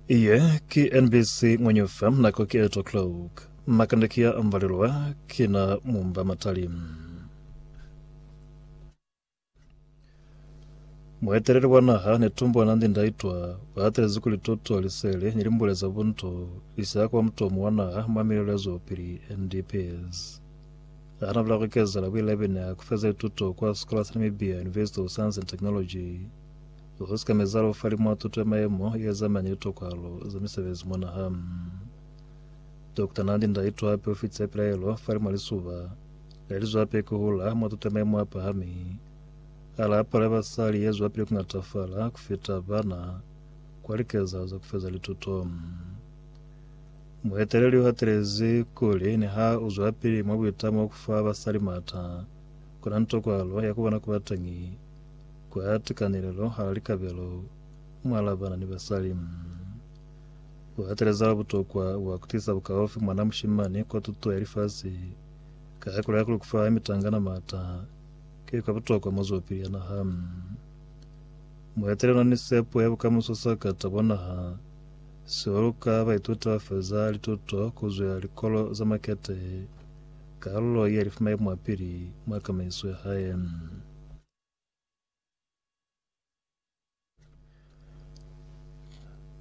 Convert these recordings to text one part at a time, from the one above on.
Iye ki NBC Ngwenyufa nako ki 8 o'clock. Makande ki ya ambalelwa ki na mumba matali. Mueteleli wa naha ne tumbo Nandi Ndaitwa uatelezi kuli tuto, liseli ni limbule za buntu li siya kuba mutomo wa naha mwa milelo ya zwelopili NDPS. Ha na bula ku ikezela builaibena ku feza lituto kwa sikola sa Namibia University of Science and Technology Lu sika meza lu fa limwa tuto ya mayemo ye zamani litokalo za misebezi mwa naha. Dokota Nandi Ndaitwah hape u fitise pilaelo fa limwa lisuba le li zwape ku hula mwa tuto ya mayemo a pahami, a la palo ya basali ye zwapili ku ngatafala ku fita bana kwa likezahalo za ku feza lituto. Mueteleli u hatelezi kuli niha u zwapili mwa buitamo ku fa basali m'ata, ku na ni tokwalo ya ku bona ku ba teñi Ku ya tikanelelo ha likabelo mu alabana ni basali, ku hateleza butokwa bwa ku tisa bukaufi mwana mushimani kwa tuto ya lifasi ka ya ku laya kuli ku fa mitangana maata ki kwa butokwa mwa zwapili ya naha. Mu etele luna ni sepo ya bukamuso sa ka tabo naha, sihulu ka baituti ba feza lituto ku zwa likolo za makete, kalulo ye li fumai mwapili mwa kamaiso ya hae.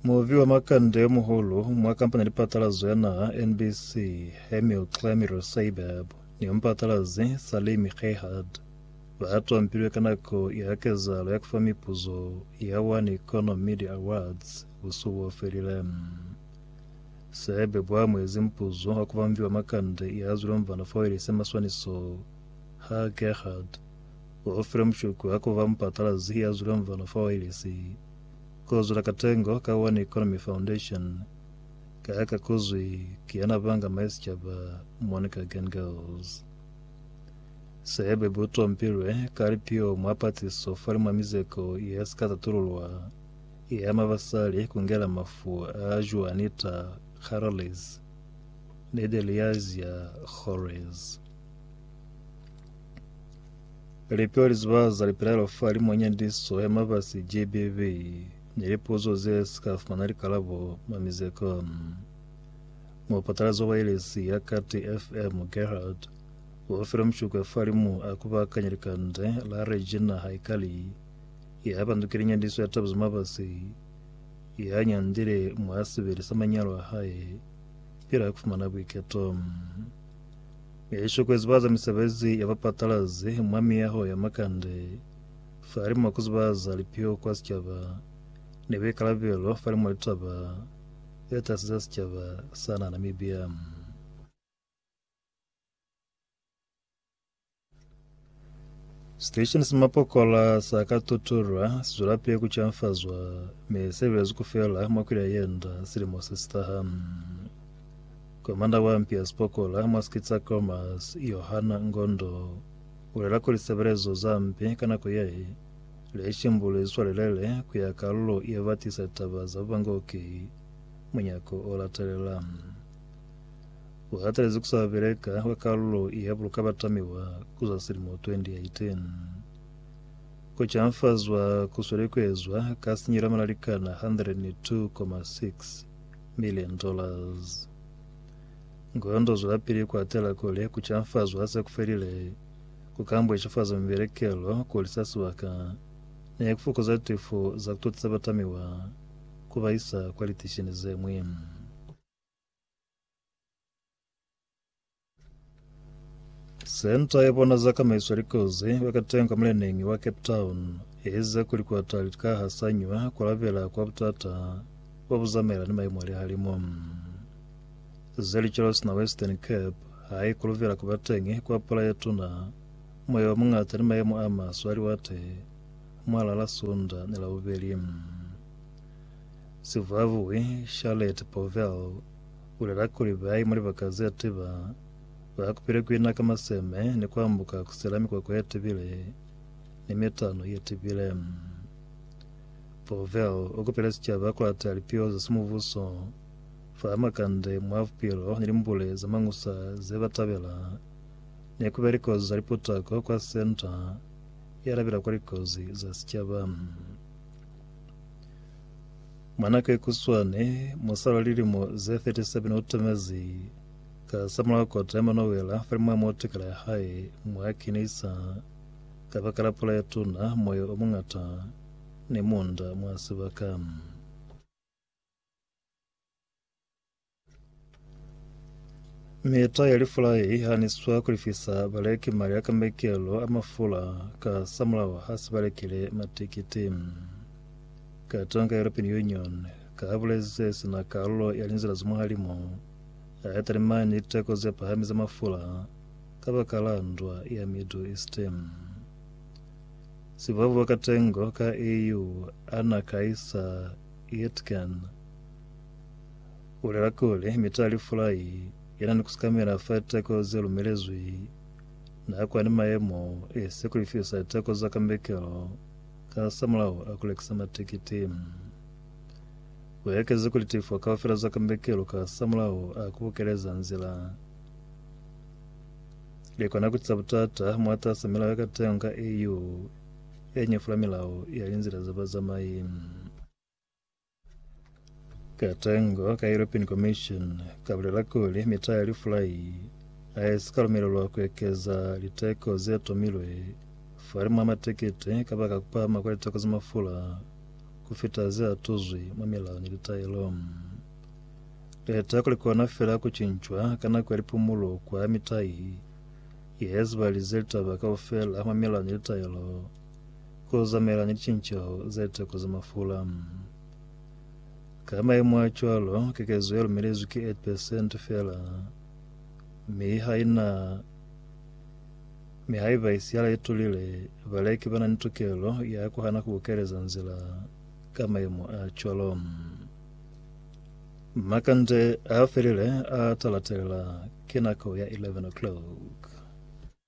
Muvi wa makande yo muhulu mwa kampani ya lipatalazo ya naha NBC, Hemil Clamiro Seibab, ni yomupatalazi Salim Khehad, ba tompilwe ka nako ya kezahalo ya kufa mipuzo ya One Economy Media Awards busuku bo felile. Seibab bwa amuezi mupuzo wa kuba muvi wa makande ya zwilomvana fo ile se maswaniso ha Khehad Wa fila mushuku ha kuba mupatalazi ya zulang bana fa wailesi. Ku zula katengo ka One Economy Foundation ka ha ka kuzwi ki yana banga mai sicaba, Monica Gengels. Sebe bu tompilwe ka lipio mwa patiso fali mwa mizeko ye si ka tatululwa ye ama basali ku ngela mafu a Juanita Carles ni Deliazia Jorres. Lipeo li ziba za lipelaelo fa limo nyandiswa ya mabasi GBV ni lipuzo ze si ka fumana likalabo mwa mizeko. Mupatalazi wa wailesi ya Kati FM Gerhard o file mushukwe fa limo a kubakanya likande la Regina Haikali ya pandukile nyandiswa ya taba za mabasi ya nyandile mwa sibili sa manyalo a hae pila kufumana buiketo. Yesu kuzibaza misebezi ya bapatalazi mwa miyaho ya makande falimo kuzibaza lipio kwa sicaba ni buikalabelo falimo litaba ze tasi za sicaba sa na Namibia. Station sa mapokola sa ka tutulwa si zwela pele ku canfazwa mi se belezwi ku fela mwa kwili ya yenda silimo se si taha. Komanda wa mpi ya sipokola mwa Skitsa Comas, Yohana Ngondo, u lela kuli sebelezo za mpi ka nako ye le shimbuli zwi swalelele ku ya kalulo ye ba tisa litaba za bubangoki munyako o latelela. u hatelezi ku sa beleka kwa kalulo ya buluka batamiwa ku za silimo 2018. Ku canfazwa ku sweli ku ezwa ka sinyelo ya malalikana $102.6 milioni. Ngondo zwelapili ku atela kuli ku canfazwa ha se ku felile ku ka mbweshifaza mibelekelo kuli sa sibaka ni ku fokoza tifo za ku totisa batamiwa ku ba isa kwa litishini ze ñwi. Senta ya bona za kamaiso ya likozi kwa katengo ka muleneñi wa Cape Town e ize kuli kwa tali lika ha sañwa ku alabela kwa butata bo bu zamaelana ni maimo a lihalimu. Ze licelo sina Western Cape ha i kulubela ku ba teñi kwa pula ye tuna, moya o muñata ni maimo a maswe a liwate mwalala Sunda ni Labubeli. Sivuavui Charlotte Povell ulela kuli bai mwa libaka zetiba ba kupile kuina ka maseme ni kuambuka kusela mikwakwa yetibile ni mitano yetibile. Povell ukupile sicaba kuata lipiho za simubuso fa makande mwa bupilo ni limbule za mañusa zebatabela ni kubeya likozi za liputako kwa Senta yalabela kwa likozi za sicaba. Mwana ka ikuswani, musala lilimo ze 37 o tamezi ka samulaho kota ya manowela falimwa motikala ya hae mwa kinisa ka baka la pula ya tuna, moya o mungata ni munda mwa sibaka. Mita ya lifula ye i haniswa ku lifisa baleki mali a kamekelo a mafula ka samulaho ha se ba lekile matikiti. Katonga European Union ka ha buleze sina kalulo ya linzila za muhalimu a ya talimani liteko ze pahami za mafula ka baka la ndwa ya Middle East. Sibabu wa katengo ka EU, Anna Kaisa Yetgen, Bulela kuli, Mitali Fulai yana ni kusikamela fa liteko ze lumelezwi, na kwa ni mayemo e si ku lifisa liteko za kambekelo kasamulaho a ku lekisa matikiti. Uekezi kuli tifo kaufela za kambekelo kasamulaho a ku bukeleza nzila likona kutisa butata mwatasa milao ya katengo ka EU ye nyefula milao ya linzila za bazamai. Katengo ka European Commission kabulela kuli mita ya lifulai haisika lumelelwa kuekeza liteko zetomilwe fahalimu ha matekete kabaka kupahama kwa liteko za mafula kufita zeatuzwi mwa milao ni litaelo. Liteko likona feela kucincwa ka nako ya lipumulo kwa mitai yezibalize litaba kaufela mwa milao ni litaelo. ku zamela ni licinceho za liteko za mafula. Ka maemo a cwalo, kekezo ye lumelezwi ki 8 percent fela, mi ha ina mi haiba isi ya laitulile, baleki bana ni tukelo ya kuhana ku bukeleza nzila ka maemo a cwalo. Makande a felile a ta latelela ki nako ya 11 o'clock.